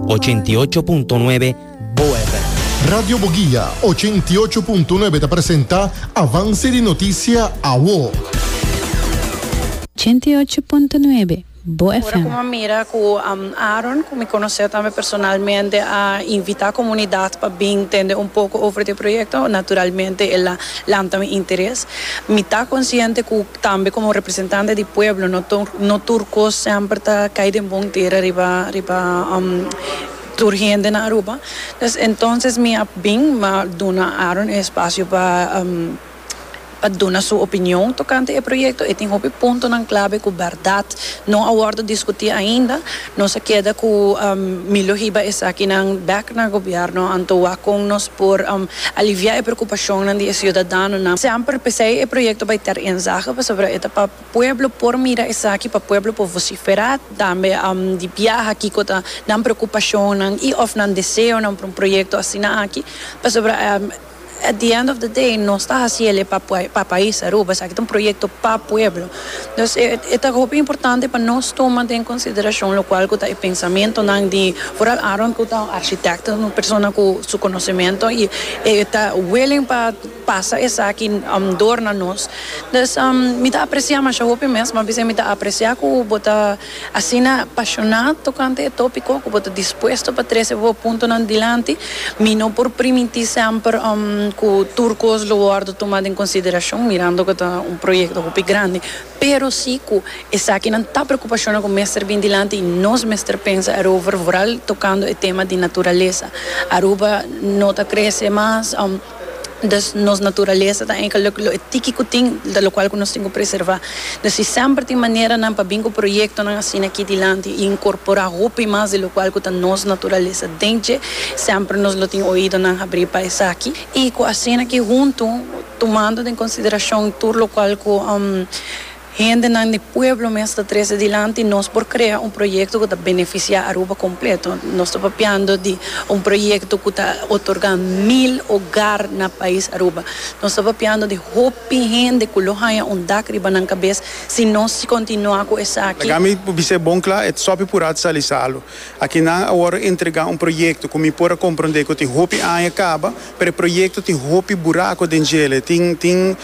Ochenta i ocho punto nuebe Boe FM. Radio Boguia ochenta i ocho punto nuebe ta presenta Avance di Noticia Awo. Ochenta i ocho punto nuebe Boe Ora ku FM. mi a mira ku Aaron, ku mi konosé tambe personalmente, a invitá komunidat pa bin tende un poko over di e proyekto, naturalmente el a lanta mi interes. Mi ta konsiente ku Tambe komo representante di pueblo no tur no tur kos semper ta kai den bon tera riba riba tur hende na Aruba pues entonces mi a bin ma duna Aaron e espacio pa pa duna su opinion tocante e proyecto e tin hopi puntonan clave cu berdad no a wordo discuti ainda. Nos a keda cu Milo hiba esakinan bek na gobierno anto wak con nos por alivia e preocupacionnan di e ciudadanonan. Semper pesey e proyecto bay ter enzaga pasobra e ta pa pueblo por mira esaki, pa pueblo por vocifera tambe di biaha kico ta nan preocupacionnan y of nan deseonan pa un proyecto asina aki pasobra. At the end of the day nos ta haciele pa pa pais Aruba, esaki ta un proyecto pa pueblo. Dus e e ta hopi importante pa nos tuma den consideracion locual cu ta e pensamentonan di vooral Aaron cu ta un architecto, un persona cu su conocemento y e ta willing pa pasa esaki door na nos. Dus mi ta aprecia masha hopi mes, mas bien mi ta aprecia cu bo ta. Asina pashoná tokante e tópiko ku bo ta dispuesto pa trese bo puntonan dilanti, mi no por primintí semper ku tur kos lo wòrdu tumá den konsiderashon, mirando ku ta un proyekto hopi grandi, pero sí ku esakinan ta preokupashonnan ku mester bin dilanti i nos mester pensa erover, vooral tokando e tema di naturalesa. Aruba no ta krese mas. Dòs, nos naturalesa ta enka lo lo e tiki ku tin, ta lokual ku nos tin ku preservá. Dòs, si semper tin maneranan pa bin ku proyektonan asina aki dilanti i inkorporá hopi mas di lokual ku ta nos naturalesa den dje, semper nos lo tin oídonan habrí pa esaki. I ku asina aki huntu, tumando den konsiderashon tur lokual ku. Hendenan di pueblo mes ta trese dilanti, nos por krea un proyekto ku ta benefisiá Aruba kompleto. Nos ta papiando di un proyekto ku ta otorgá mil ogar na pais Aruba. Nos ta papiando di hopi hende ku lo haña un dak riba nan kabes si nos si kontinuá ku esaki. Laga mi por bis'é bon kla, e Tsopi por a tsalisalo. Akinan awor a entregá un proyekto ku mi por a komprondé ku tin hopi aña kaba. Preproyekto tin hopi burako den djel'e. Tin tin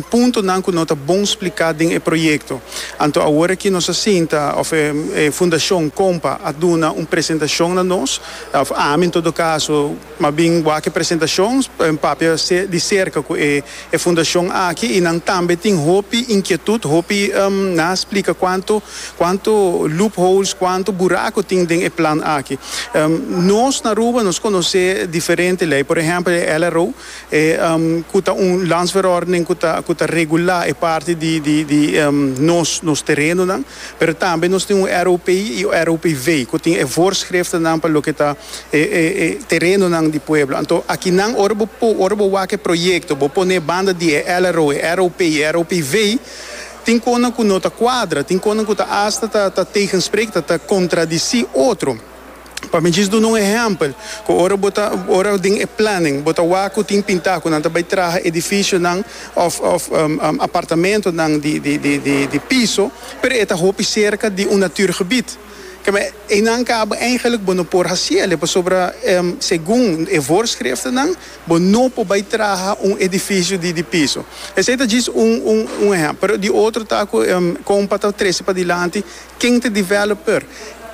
puntonan ku no ta bon spliká den e proyekto. Anto awor aki nos a sinta òf e Fundashon Kompa a duna un presentashon na nos, òf ami en todo kaso, mabien wak e presentashon papia di serka ku e E fundashon aki i nan tambe tin hopi inkietut, hopi na splika kuantu kuantu loopholes, kuantu buraku tin den e plan aki. Nos na Aruba nos konosé diferente lei, por ehèmpel e LRO, e ku ta un landsverordening ku ta ku ta regulá e parti di di di nos nos terenonan, pero tambe nos tin un ROP i ROPV ku tin e voorschriftennan pa loke ta. e e e terenonan di pueblo. Anto aki nan ora bo po ora bo wak e proyekto bo pone banda di e LRO, e ROP i e ROPV tin konan ku no ta kuadra, tin konan ku ta asta ta ta tegensprek ta ta kontradisí otro. Pa mi djis duna un ehèmpel ku ora bo ta ora den e plannen bo ta wak ku tin pintá ku nan ta bai traha edifisionan òf òf apartamentonan di di di di piso pero e ta hopi serka di un natuurgebied. Keme, einan kaba eigenlijk bo no por hasiele, pasobra segun e voorschriftennan bo no por bai traha un edifisio di di piso. Esei ta djis un un un ehèmpel, pero di otro ta ku kompa ta trese padilanti ken ta developer,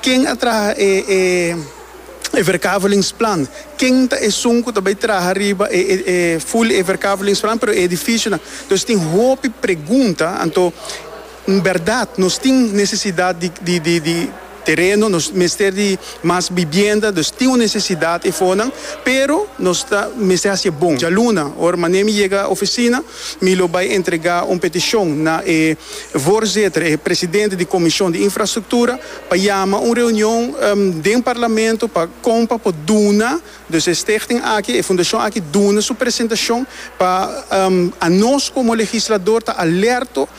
ken a traha e e e verkavelingsplan, ken ta esun ku ta bai traha riba e e full e verkavelingsplan pero e edifisionan. Dus tin hopi pregunta, anto Un berdad, nos tin necesidad di di tereno, nos mester di mas bibienda, dus tin un necesidad efonan, pero nos ta mester haci e bon. Djaluna, ora Mané mi yega oficina, mi lo bay entrega un peticion na e voorzitter, e presidente di Comision di Infrastructura, pa yama un reunion den Parlamento pa con pa por duna, dus e stichting aki, e fundacion aki duna su presentacion pa anos como legislador ta alerto,